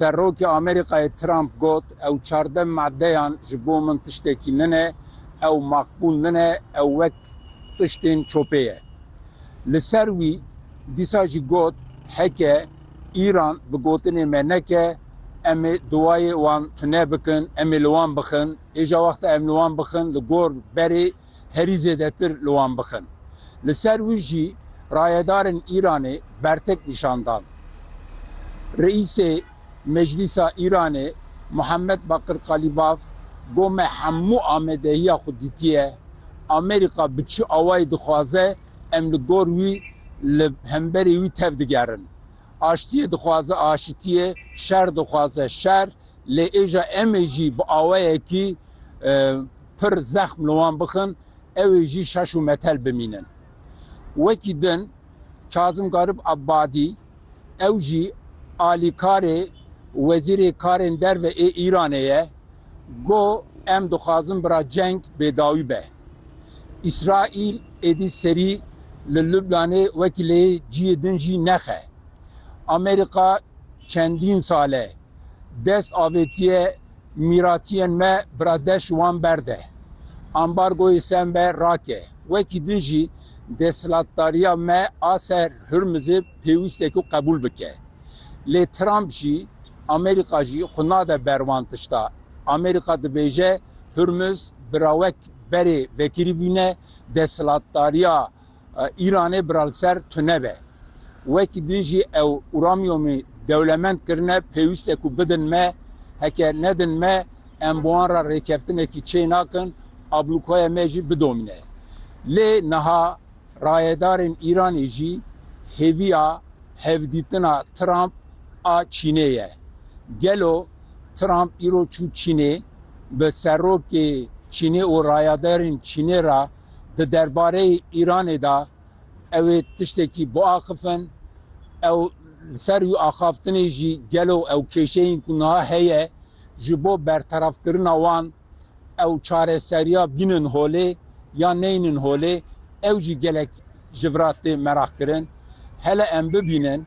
Serokê Amerîkayê Trump got, Ew çardeh madeyan ji bo min tiştekî nine, ew makbûl nine, ew wek tiştên çopê ye. Li ser wî dîsa jî got, Heke Îran bi gotinê me neke, em ê duwayê wan tune bikin, em ê li wan bixin. Êja wexta em li wan bixin li gor berê herî zêdetir li wan bixin. Li ser wî jî rayedarên Îranê bertek nîşan dan. Reîsê Meclîsa Îranê Muhammed Bakir Kalîbaf got me hemû amadehiya xwe dîtiye. Amerîka bi çi awayî dixwaze em li gor wî li hemberî wî tev digerin. Aştiyê dixwaze aşitiyê, şer dixwaze şer lê êja em ê jî bi awayekî. pir zexm li wan bixin ew ê jî şaş û metel bimînin. Wekî din Kazim Garip Abadî ew jî alîkarê Wezîrê Karên Derve ê Îranê ye got, Em dixwazin bira ceng bêdawî be. Îsraîl êdî serî li Lublanê wekî lê ciyê din jî nexe. Amerîka çendîn sal e dest avêtiye Mîratiyên me biradeş wan berde. Ambargoyê ser me rake. Wekî din jî desthilatdariya me a ser Hurmizê pêwîste ku qebûl bike. Lê Trump jî, Amerîka jî xwe nade ber wan tişta. Amerîka dibêje Hurmiz bi rawek berê vekirîbûne desthilatdariya Îranê bira li ser tu nebe. Wekî din jî ew uramyomî dewlemend kirine, pêwîst e ku bidin me, heke nedin me em bi wan re rêkeftinekî çê nakin, ablûkaya me jî bidomîne. Lê niha rayedarên Îranê jî hêviya hevdîtina Trump a Çînê ye. Gelo Trump îro çû Çînê, bi serokê Çînê û rayadarên Çînê re, di derbareyê Îranê de ew ê tiştekî biaxifin, ew li ser wî axaftinê jî gelo ew kêşeyên ku niha heye ji bo bertefkirina wan ew çareseriya bînin holê yan neynin holê ew jî gelek ji vira tê meraqkirin. Hele em bibînin.